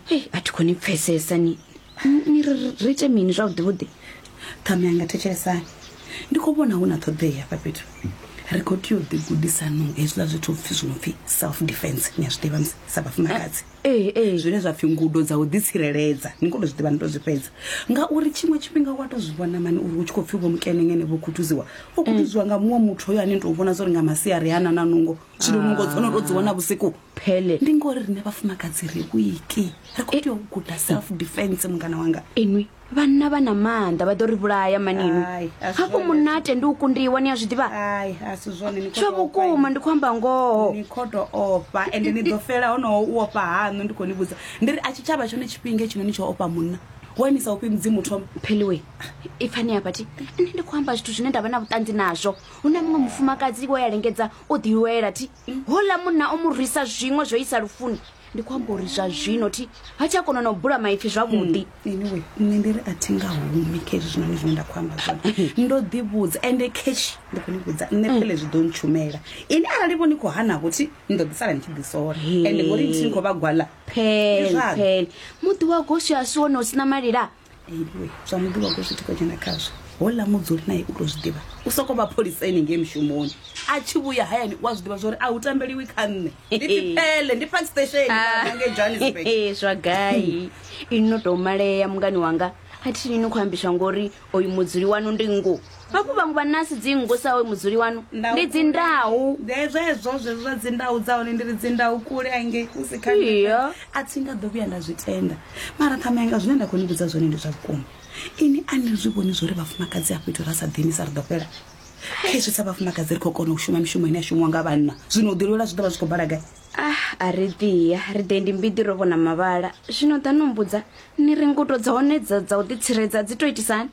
hei a thi khou ni pfesesa ni ni- ni ri ri- ri ite mini zwavhuḓi vhuḓi ṱhame yanga thetshelesani ndi khou vhona hu na ṱhoḓea hafha fhethu ri khou tea u ḓigudisanong hezwiḽa zwithu pfhi zwi no pfhi self defense ni a zwi ḓivha musi sa vhafumakadzi ee ee zwine zwa pfhi ngudo dza u ḓitsireledza ni kho to zwi ḓivha ni to zwi fhedza ngauri tshiṅwe tshifhinga wa to zwi vhona mani uri hu tshi khou pfhi vho mukenengene vho khuthuziwa vho khuthuziwa nga muṅwe muthu hoyo ane ni tou vhona zwo ri nga masiari hana na nungo zwino nungo dzo no to dzi wana vhusiku phele ndi ngori rine vhafumakadzi ri wiki ri khou tea u guda self defense mungana wanga inwi vhanna vha na maanḓa vha ḓo ri vhulaya manini Ai, a si hafho zwone. munate ndi u kundiwa ni a zwi ḓivha ai a si zwone ni khou tsho tou ofha vhukuma ndi khou amba ngoho ni khou tou ofha ende ni ḓo fela honoho u ofha haṋu ndi khou ni vhudza ndi ri a tshi tshavha tshone tshifhinga tshino ni tsho ofha munna wa ni sa ofhi mudzimu thoma pheliwe ipfani hafha ti nṋe ndi khou amba zwithu zwine nda vha na vhuṱanzi nazwo hu na muṅwe mufumakadzi wo ya lengedza o ḓiwela ti houḽa munna o mu rwisa zwiṅwe zwo isa lufuni ndi khou amba uri zwa zwino thi ha tsha kona na u bula maipfi zwavhuḓi hmm, anyway nṋe ndi ri a thi nga humi khe hezwi zwinoni zwine nda khou amba zwone ndo ḓivhudza ende khetshi ndi khou ni vhudza nṋe hmm. phele zwi ḓo ntshumela ini arali vho ni khou hanavho thi ni ḓo ḓisala ni tshi ḓisola ende ngori thi ni khou vha gwala phele phele muḓi wa goswi a si wone u si na malila iwe zwa muḓivha u to zwi tika dzhena khazwo hola mudzuli naye u to zwi ḓivha u soko vha pholisa ene ngei mushumoni a tshi vhuya hayani u a zwi ḓivha zwa uri a hu tambeliwi kha nṋe ndi pipele ndi park station nge johannesburg Ee, zwa gai ini no tou malea mungani wanga a thi ni khou ambiswa ngori oyu mudzuli wanu ndi ngo hafhu vhaṅwe vha nasi dzingu sa oyo mudzuli wanu ndi dzindau zwezwo zwezwo zwa dzindau dza hone ndi ri dzindau kule hange hu si kha Iyo. a thi nga ḓo vhuya nda zwi tenda mara ṱhamanga zwine nda khou ni vhudza zwone ndi zwa vhukuma ini a ni zwi vhoni zwo ri vhafumakadzi a fhethu ra sa ḓini sa ri ḓo fhela khezwi sa vhafumakadzi ri khou kona u shuma mishumo ine ya shumiwa nga vhanna zwino u ḓilwela zwi ḓo vha zwi khou bala gai ah a ri ḓiya ri ḓe ndi mbiḓi ro vhona mavhala zwino ḓa no mbudza ni ri ngudo dza hone dza dza u ḓitsiredza dzi to itisani